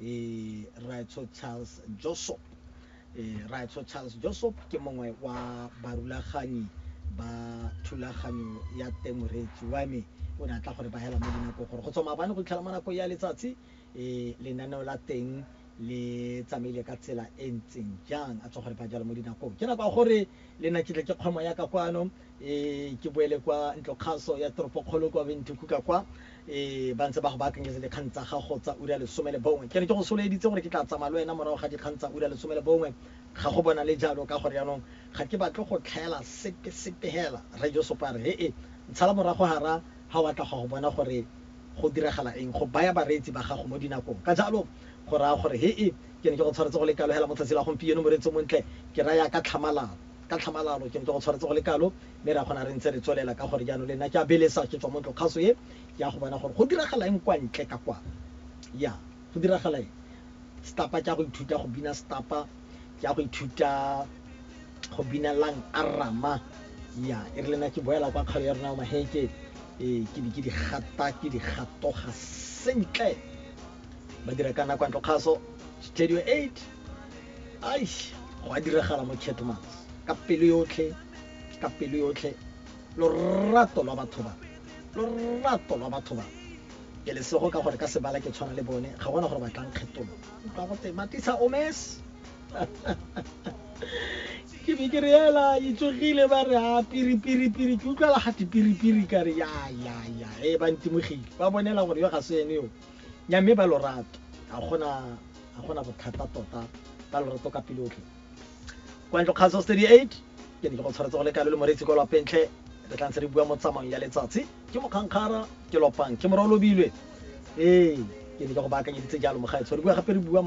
eh, raetsho charles josop eh, raetsho charles josop ke mongwe wa barulaganyi ba thulaganyo ya temoretsi wa me o ne a tla gore ba hela mo dinako gore go tswa maabane go itlhela mo nako ya letsatsi eh, lenaneo la teng le tsamaile ka tsela e ntseng jang a tswa gore ba jalo mo dinakong ke nako ya gore le nna ke tle ke kgwemo yaka kwano E, ke boele kwa ntlokgaso ya toropokgolo kwa Windhoek ka kwa, e, ba ntse ba go baakanyetsa dikgang tsa gago tsa ura ya lesome le bongwe. Ke ne ke go soloeditse gore ke tla tsamaya le wena morago ga dikgang tsa ura ya lesome le bongwe, ga go bonale jalo, ka gore jaanong ga ke batle go tlhaela sepe, sepe fela. Rre Josopa a re, He-e, ntshala morago gara, ga o a tla go ya go bona gore go diragala eng, go baya bareetsi ba gago mo dinakong. Ka jalo, go raya gore, he-e, ke ne ke go tshwaretse go le kalo fela mo tsatsing la gompieno, moreetsi o montle, ke raya ka tlhamalalo. Ka tlhamalalo, ke ntse go tshwaretse go le kalo, mme re a kgona re ntse re tswelela ka gore jaanong le nna ke a belesa ke tswa mo ntlokgaso e, ke ya go bona gore go diragala eng kwa ntle ka kwa. Ya, go diragala eng? Setapa, ke ya go ithuta go bina setapa, ke ya go ithuta go bina Lang Arama. Ya, e re le nna ke boela kwa kgaolo ya rona ya Maheke, ee, ke be ke di gata, ke di gatoga sentle. Ba dira ka nna kwa ntlokgaso, Studio Eight. Aish, go a diragala mo Kettleman's. Ka pelo yotlhe, ka pelo yotlhe, lorato lwa batho ba, lorato lwa batho ba. Ke lesego ka gore ka sebala ke tshwana le bone, ga gona gore ba tlang kgetolo. Utlwa gote, Matisa Omes! Ke be ke re ela e tsogile ba re a piri piri piri ke utlwala ga piri piri ka re ya ya ya e ba ntimogile ba bonela gore yo ga se ene yo nyamme ba lorato ga gona Ga go na bothata tota, ka lorato ka pelo yotlhe. Kwa ntlo Kgaso 38, ke ne ke go tshwaretse go le kalo le Moreetsi kwa Lwapeng Tlhe, re tla ntse re bua mo tsamaong ya letsatsi. Ke Mokgankgara, ke Lwapang, ke Morwa o Lobilwe, ee, ke ne ke go baakanyeditse jalo, Mogaetsho, re bua gape re bua mo.